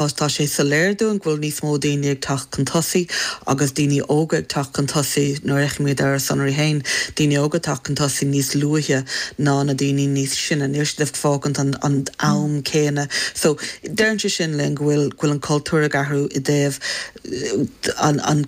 Agus tá sé soiléir dúinn go bhfuil níos mó daoine ag teacht chun tosaigh agus daoine óga ag teacht chun tosaigh nuair a fheicimid ar ár sonraí féin daoine óga ag teacht chun tosaigh níos luaithe ná na daoine níos sine, níl siad ag fágaint an am céanna. So deireann sé sin linn go bhfuil an cultúr ag athrú i dtaobh. an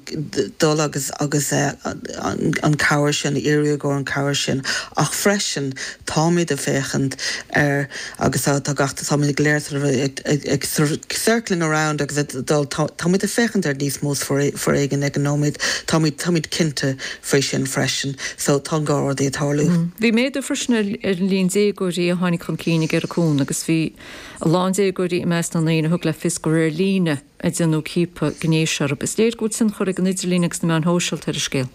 dul agus an chabhair sin, a iarraidh i gcomhair an chabhair sin, ach freisin táimid ag féachaint ar agus tá gach táimid go léir sort of ag circling around agus ag dul táimid ag féachaint ar níos mó foréigean ag an nóiméad, táimid táimid cinnte faoi sin freisin. So tá an dhá rud ag tarlú. Bhí méadú freisin ar ar an líon déagóirí a tháinig chun cinn ag iarraidh cúnaimh agus bhí a lán déagóirí i measc na ndaoine a thug le fios gur ar líne a a déanadh ciapadh gnéis orthu. Is léir go bhfuil tionchar ag an idirlíon agus na meáin shóisialta ar an scéal.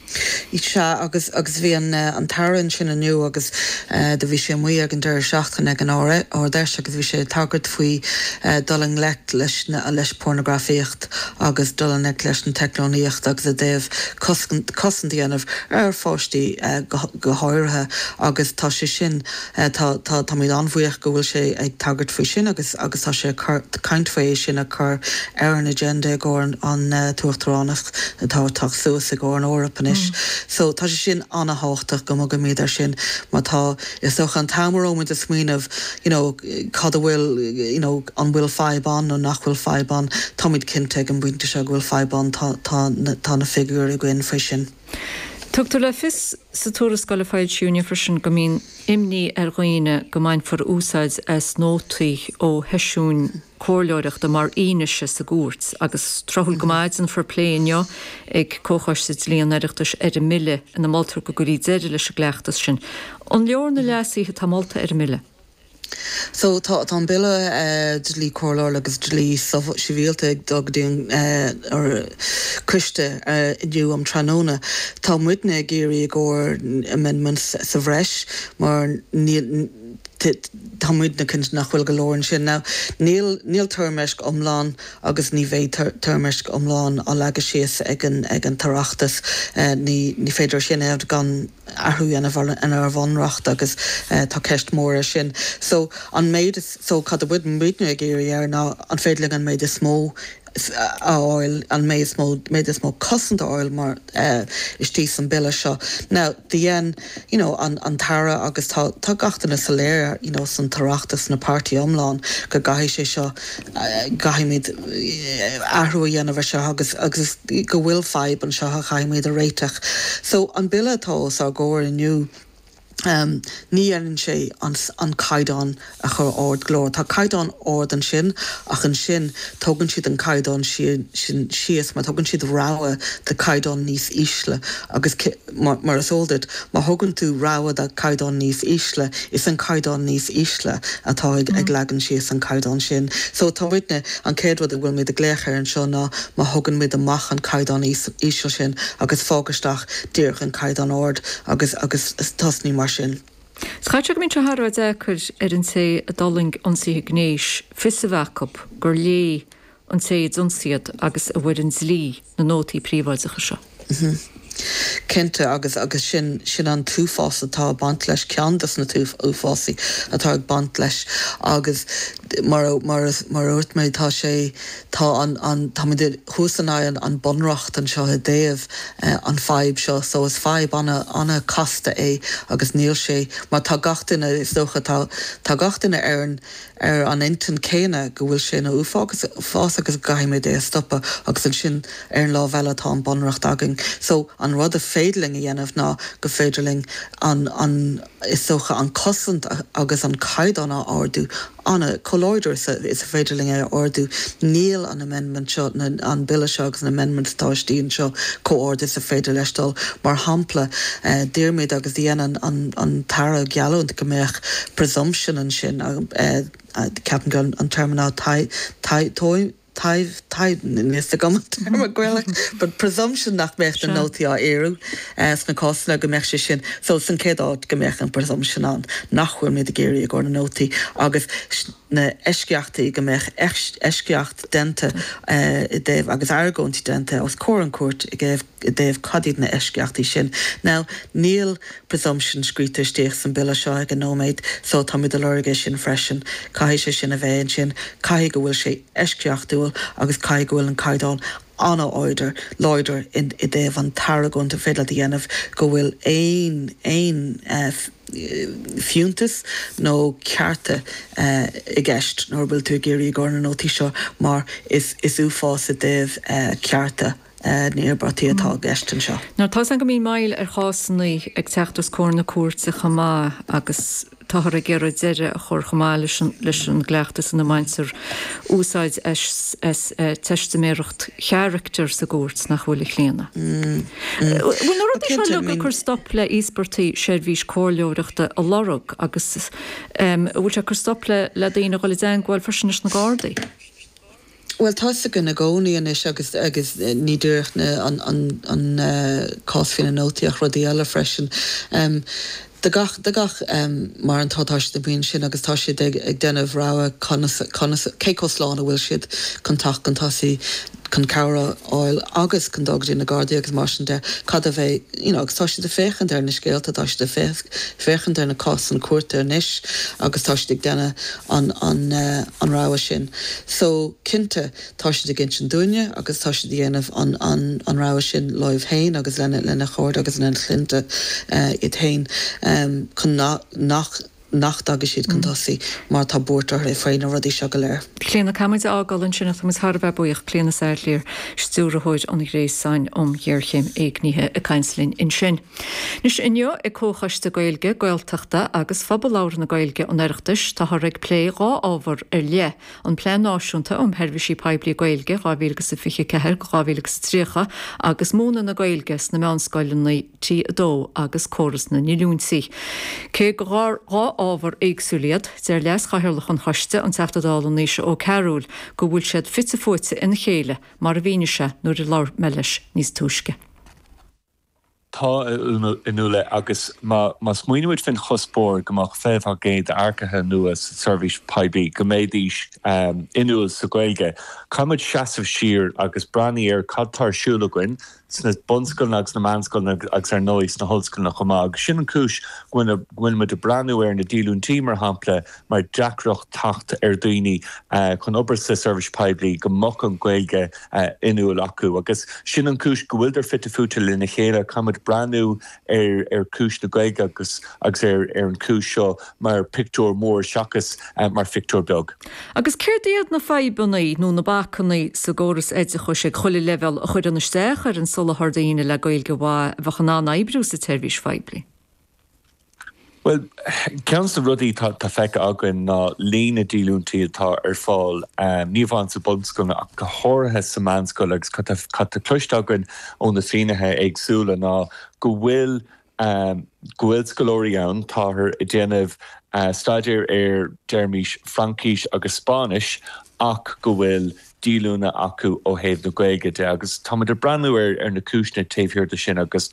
Sea agus agus bhí an an tAire ansin inniu agus do bhí sé amuigh ag an deireadh seachtaine ag an Ard Fheis agus bhí sé ag tagairt faoi dul i ngleic leis na leis pornagrafaíocht agus dul i ngleic leis an teicneolaíocht agus i dtaobh cosc cosaint a dhéanamh ar pháistí go háirithe agus tá sé sin Tá, táimid an-bhuíoch go bhfuil sé ag tagairt faoi sin agus agus tá sé ag caint faoi é sin a chur ar an agenda i gcomhair an tUachtaránacht atá ag teacht suas i gcomhair an Eoraip anois. So, tá sé sin an-tábhachtach go mbogaimid air sin mar tá, is dócha, an t-am a raibh muid ag smaoineamh you know cad a bhfuil you know an bhfuil fadhb ann nó nach bhfuil fadhb ann, táimid cinnte ag an bpointe seo go bhfuil fadhb ann, tá na figiúirí againn faoi sin. Tugtar le fios sa tuarascáil a foilsíodh inniu freisin go mbíonn imní ar dhaoine go mbainfear úsáid as nótaí ó sheisiúin comhairleoireachta mar fhianaise sa gcúirt agus tráthúil go maith déanfar plé inniu ag Comhchoiste Dlí an Oireachtais ar an mbille ina moltar go gcuirí deireadh leis an gcleachtas sin. An leor na leasuithe atá molta ar an mbille? Tá an Bille Dlí Coiriúil agus Dlí Sibhialta ag dul go dtí an Coiste inniu um tráthnóna. Tá muidne ag iarraidh i gcomhair amendments sa bhreis mar tá muidne cinnte nach bhfuil go leor ansin. Níl toirmeasc iomlán agus ní bheidh toirmeasc iomlán á leagadh síos ag an tOireachtas. Ní féidir sin a dhéanamh gan athrú a dhéanamh ar an Bhunreacht agus tá ceist mhór air sin. So an méid is, so cad a bhfuil muidne ag iarraidh air ná an féidir linn an méid is mó a fháil, an méid is mó, méid is mó cosaint a fháil mar istigh san Bille seo. Now do dhein, you know, an an tAire agus tá tá gach duine soiléir, you know, san tOireachtas, na páirtí iomlán go gcaithfidh sé seo, gcaithfimid athrú a dhéanamh ar seo agus agus go bhfuil fadhb anseo a chaithfimid a réiteach. So an Bille atá os ár gcomhair inniu, ní dhéanann sé an an caighdeán a chur ard go leor. Tá caighdeán ard ansin ach ansin tugann siad an caighdeán sin síos mar tugann siad rogha de caighdeán níos ísle agus mar is eol duit, má thugann tú rogha de chaighdeán níos ísle, is an caighdeán níos ísle atá ag leagan síos an caighdeán sin. So tá muidne, an chéad rud a bhfuil muid ag glaoch ar anseo ná má thógann muid amach an caighdeán íseal sin agus fág istigh díreach an caighdeán ard agus agus tosnaigh mar sin. Caithfidh go mbíonn sé thar a bheith deacair ar an té a d'fhulaing ionsaithe gnéis fios a bheith acu gur léigh an té a d'ionsaigh agus a bhfoireann dlí na nótaí príobháideacha seo. Cinnte, agus agus sin sin an t-uafás atá ag baint leis, ceann de na uafásaí atá ag baint leis agus mar mar mar a dúirt mé, tá sé tá an an táimid thuas in aghaidh an bunreacht anseo i dtaobh an fadhb seo so is fadhb an an casta é agus níl sé mar tá gach duine is dócha tá tá gach duine ar an ar an intinn chéanna go bhfuil sé ina uafás agus go gcaithfimid é a stopadh agus ansin ar an lámh eile tá an Bunreacht againn so an rud a féidir linn a dhéanamh ná go féidir linn an an is dócha an cosaint agus an caighdeán a ardú an chomh láidir is is féidir linn é a ardú níl an amendment seo nó an bille seo agus na amendments atá istigh anseo chomh ard is a féidir leis dul mar shampla d'iarr muid agus dhéan an an tAire geallúint go mbeadh presumption ansin ceapaim go an téarma ná níl agam an téarma Gaeilge but presumption nach mbeadh na nótaí á iarraidh sna cásanna go mbeadh sé sin so san chéad áit go mbeadh an presumption ann nach bhfuil muid ag iarraidh i gcomhair na nótaí agus na eisceachtaí go mbeadh eisceacht déanta i dtaobh agus argóint déanta os comhair an cúirt i i dtaobh cad iad na eisceachtaí sin. Now, níl presumption scríte istigh san Bille seo ag an nóiméad, so táimid ag lorg é sin freisin. Caithfidh sé sin a bheith ansin. Caithfidh go bhfuil sé eisceachtúil agus caithfidh go bhfuil an caighdeán an-láidir, láidir in, i dtaobh an t-argóint a féidir leat a dhéanamh go bhfuil aon, aon fiúntas nó cearta i gceist nuair a bhfuil tú ag iarraidh i gcomhair na nótaí seo mar is, is uafás i dtaobh cearta. an iarrataí atá i gceist anseo. Nuair atá's againn go mbíonn moill ar chásanna ag teacht os comhair na Cúirte chomh maith agus táthar ag iarraidh deireadh a chur chomh maith leis an gcleachtas ina mbaintear úsáid as teistiméireacht charactair sa gcúirt nach bhfuil, a Chlíona? Bhfuil na rudaí seo uilig ag cur stop le íospartaigh seirbhís comhairleoireachta a lorg agus an bhfuil sé ag cur stop le daoine a dhul i dteagmháil freisin leis na Gardaí? Bhuel, tá's againn i gcónaí anois agus ní díreach an cás faoina nótaí ach rudaí eile freisin. De gach, de gach, mar an tá siad amuigh ansin agus tá siad ag déanamh rogha conas, conas, cé chomh slán a bhfuil siad chun teacht chun tosaigh, chun cabhair a fháil agus chun dul go dtí na Gardaí agus mar sin de, cad a bheidh, you know, agus tá siad ag féachaint ar na scéalta, tá siad ag féachaint ar na cásanna cúirte anois agus tá siad ag déanamh an rogha sin. So, cinnte, tá siad ag insint dúinne agus tá siad a dhéanamh an rogha sin leo féin agus lena chairde agus lena chlainne iad féin chun nach nach dtagaidh siad chun tosaigh mar tá buairt orthu faoi na rudaí seo go léir. Clíona, Caithfidh muid é a fhágáil ansin ach tá muid thar a bheith buíoch. Clíona Saidléar, Stiúrthóir an Ghréasáin um Ghéarchéim Éignithe ag caint linn ansin. Anois inniu ag Comhchoiste Gaeilge, Gaeltachta agus Phobal Labhartha na Gaeilge an Oireachtais táthar ag plé dhá ábhar ar leith, an Plean Náisiúnta um Sheirbhísí Poiblí Gaeilge 2024-2030 agus múineadh na Gaeilge sna meánscoileanna T2 agus córas na ndíolúintí. Cé gur dhá ábhar éagsúil iad, deir Leas-Chathaoirleach an Choiste, an Teachta Dála Naoise Ó Cearúil, go bhfuil siad fite fuaite ina chéile, mar a mhínigh sé nuair a labhair mé leis níos túisce. Tá, a Fhionnuala, agus má smaoinímid faoin chuspóir go mbeadh 20% d'earcaithe nua sa tseirbhís poiblí go mbeidís inniúil sa Ghaeilge, caithfidh muid seasamh siar agus breathnú ar cad tá ar siúl againn sna bunscoileanna agus na meánscoileanna agus ar ndóigh sna hollscoileanna chomh maith. Agus sin an cúis go bhfuil muid ag breathnú ar na díolúintí mar shampla, mar deacracht teacht ar dhaoine chun obair sa seirbhís poiblí go mbeadh an Ghaeilge inniúil acu. Agus sin an chúis go bhfuiltear fite fuaite lena chéile. Caithfimid breathnú ar chúis na Gaeilge agus agus ar ar an chúis seo mar pictiúr mór seachas mar phictiúr beag. Agus céard iad na fadhbanna nó na bacanna sa gcóras oideachais ag chuile leibhéal a chuireann isteach ar an soláthar daoine le Gaeilge mhaith a bheadh in ann oibriú sa tseirbhís phoiblí? Bhuel, ceann de na rudaí atá feicthe againn ná líon na díolúintí atá ar fáil, ní amháin sa bhunscoil ach go háirithe sa meánscoil, agus cad atá cloiste againn ó na finnéithe éagsúla ná go bhfuil, go bhfuil scoláirí ann, táthar ag déanamh staidéir ar, déarfaimis, Fraincis agus Spáinnis ach go bhfuil díolúine acu ó thaobh na Gaeilge de agus táimid ag breathnú ar na cúiseanna taobh thiar de sin agus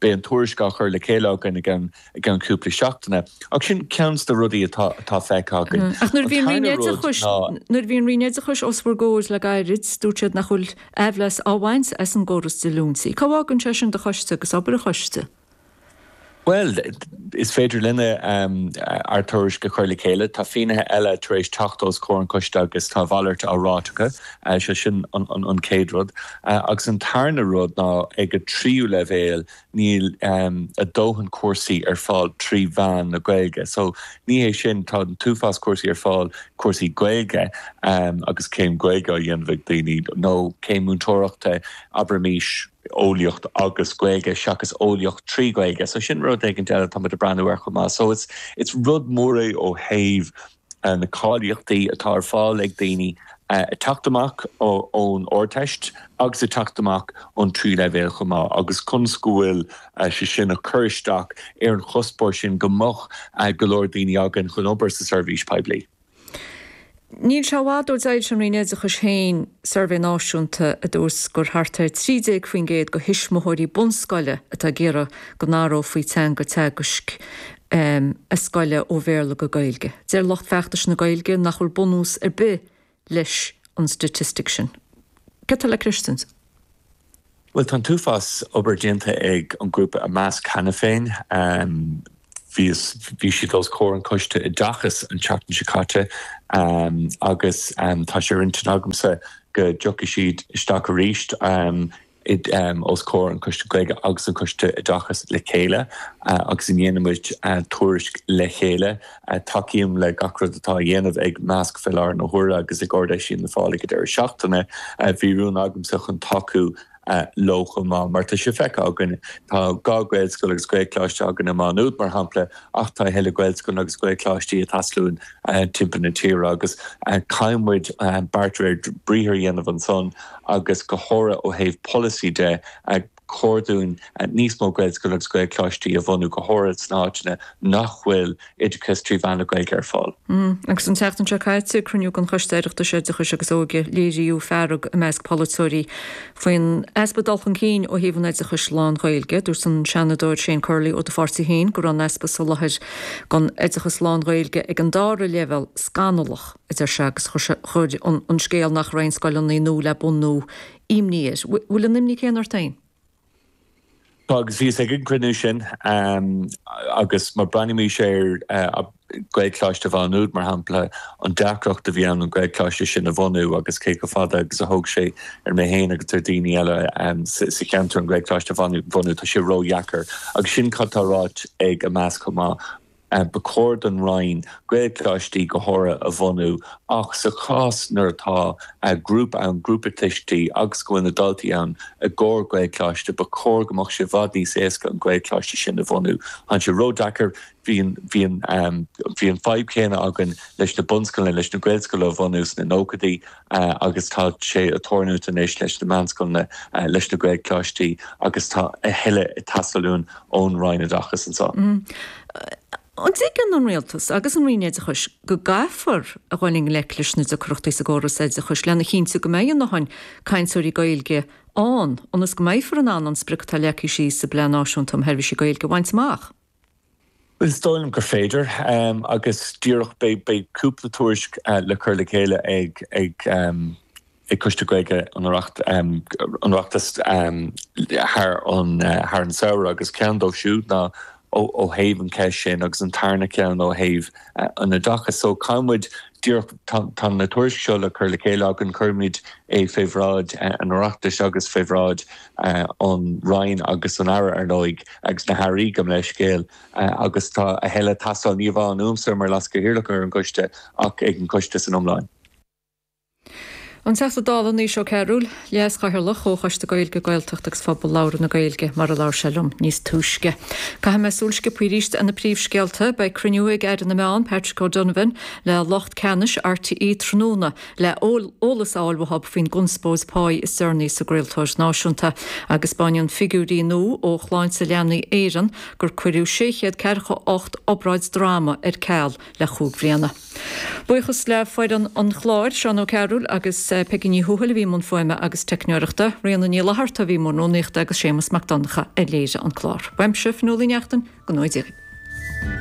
beidh an tuairisc á chur le chéile againn i gceann cúpla seachtaine. Ach sin ceann de na rudaí atá feicthe againn. Ach nuair a bhí an Roinn Oideachais, nuair a bhí an Roinn Oideachais os bhur gcomhair le gairid, dúirt siad nach bhfuil mí-leas á bhaint as an gcóras díolúintí. Cá bhfágann sé sin do choiste agus obair an choiste? Bhuel, is féidir linne ár dtuairisc a chur le chéile. Tá fínnithe eile tar éis teacht os comhair an choiste agus tá a mhalairt á ráit acu. Sé sin an chéad rud. Agus an tarna rud ná ag an tríú leibhéal níl ár ndóthain cúrsaí ar fáil trí mheán na Gaeilge. So ní hé sin, tá an t-uafás cúrsaí ar fáil, cúrsaí Gaeilge agus céim Gaeilge á dhéanamh ag daoine nó céim múinteoireachta, abraimís. eolaíocht agus Gaeilge seachas eolaíocht trí Ghaeilge. So sin rud éigint eile atáimid ag breathnú ar chomh maith. So is rud mór é ó thaobh na cáilíochtaí atá ar fáil ag daoine ag teacht amach ón Ardteist agus ag teacht amach ón trí leibhéal chomh maith agus conas go bhfuil sé sin ag cur isteach ar an chuspóir sin go mbeadh go leor daoine againn chun obair sa seirbhís poiblí. Níl sé i bhfad ó d'fhoilsigh an Roinn Oideachais féin suirbhé náisiúnta a dúirt gur thart ar 13% de thuismitheoirí bunscoile atá ag iarraidh go n-athrófaí teanga teagaisc a scoile ó Bhéarla go Gaeilge. Deir lucht feachtais na Gaeilge nach bhfuil bunús ar bith leis an staitistic sin. Cad a deir tú leis sin? Bhuel, tá an t-uafás obair déanta ag an grúpa Imeasc cheana féin. Bhí, bhí siad os comhair an Choiste Oideachais an tseachtain seo caite agus tá sé ar intinn agamsa go dtiocfaidh siad isteach arís os comhair an Choiste Gaeilge agus an Choiste Oideachais le chéile agus go ndéanfaimid tuairisc le chéile Tacaím le gach rud atá á dhéanamh ag Imeasc fé láthair na huaire agus ag Ard Fheis Fhianna Fáil ag an deireadh seachtaine. Bhí rún agamsa chun tacú leo chomh maith. Mar tá sé feicthe againn, tá dhá Ghaelscoil agus Gaelcholáiste againn i Má Nuad, mar shampla, ach tá a thuilleadh Gaelscoileanna agus Gaelcholáistí a theasluíonn timpeall na tíre agus caithfidh muid beart de réir briathar a dhéanamh ansan agus go háirithe ó thaobh polasaí de. chóir dúinn níos mó Gaelscoileanna agus Gaelcholáistí a bhunú, go háirid sna háiteanna nach bhfuil oideachas trí mheán na Gaeilge ar fáil. Agus an tseachtain seo caite ag cruinniú den Choiste Oireachtais Oideachais agus Óige, léiríodh fearg i measc polaiteoirí faoin easpa dul chun cinn ó thaobh an oideachais lán-Ghaeilge. Dúirt an Seanadóir Shane Curley ó do pháirtí féin go raibh an easpa soláthair don oideachas lán-Ghaeilge ag an dara leibhéal scannalach, a deir sé, agus chuir an scéal nach raibh aon scoileanna nua le bunú i imní air. Bhfuil an imní céanna ort féin? Tá agus bhíos ag an gcruinniú sin agus má breathnaímis ar Gaelcholáiste Mhá Nuad, mar shampla, an deacracht a bhí ann an Gaelcholáiste sin a bhunú agus cé chomh fada agus a thóg sé ar mé féin agus ar dhaoine eile sa cheantar an Gaelcholáiste a bhunú, tá sé ródheacair. Agus sin cad tá ráite ag Imeasc chomh maith. Ba chóir don Roinn Gaelcholáistí go háirithe a bhunú ach sa chás nuair atá grúpa ann, grúpa tuistí, agus go bhfuil na daltaí ann i gcomhair Gaelcholáiste, ba chóir go mbeadh sé i bhfad níos éasca an Gaelcholáiste sin a bhunú. Tánn sé ródheacair, bhí an fadhb chéanna againn leis na bunscoileanna, leis na Gaelscoileanna a bhunú sna nóchaidí, agus tá sé ag tarlúint anois leis na meánscoileanna leis na Gaelcholáistí agus tá a thuilleadh ag teastáil uainn ón Roinn Oideachais anseo. An dtuigeann an Rialtas agus an Roinn Oideachais go gcaithfear a dhul i ngleic leis na deacrachtaí sa gcóras oideachais lena chinntiú go mbeidh a ndóthain cainteoirí Gaeilge ann ionas go mbeifear in ann an sprioc atá leagtha síos sa bPlean Náisiúnta um Sheirbhísí Gaeilge a bhaint amach? Is dóigh liom gur féidir agus díreach beidh cúpla tuairisc le cur le chéile ag Coiste Gaeilge an Oireachtais thar an samhradh agus ceann díobh siúd ná ó thaobh an cheist sin agus an tarna ceann ó thaobh an oideachais. So caithfidh muid díreach, tá na tuairisc seo le cur le chéile againn, cuirfimid é fé bhráid an Oireachtais agus fé bhráid an Roinn agus an Aire, ar ndóigh, agus na hAirí, gabh mo leithscéal, agus tá a thuilleadh ag teastáil ní hamháin uaimse mar leaschathaoirleach ar an gcoiste ach ag an gcoiste san iomlán. An Teachta Dála Naoise Ó Cearúil, Leas-Chathaoirleach Chomhchoiste Gaeilge, Gaeltachta agus Phobal Labhartha na Gaeilge, mar a labhair sé liom níos túisce. Caithfidh mé súil sciobtha arís ar na príomhscéalta. Beidh cruinniú ag Aire na Meán, Patrick O'Donovan, le lucht ceannais RTÉ tráthnóna, le heolas a fháil uathub faoin gconspóid pá is deireanaí sa gcraoltóir náisiúnta agus spáineann figiúirí nua ó Shláinte Leanaí Éireann gur cuireadh sé chéad ceathracha ocht obráid droma ar ceal le cúig bliana. Buíochas le foireann an chláir, Seán Ó Cearúil agus Peigí Ní Thuathail a bhí i mbun fuaime agus teicneoireachta, Ríona Ní Fhlatharta a bhí i mbun rúnaíochta agus Séamas Mac Donncha a léirigh an clár. Uaimse, Fionnuala Uí Neachtain, go ngnóthaí Dia dhaoibh.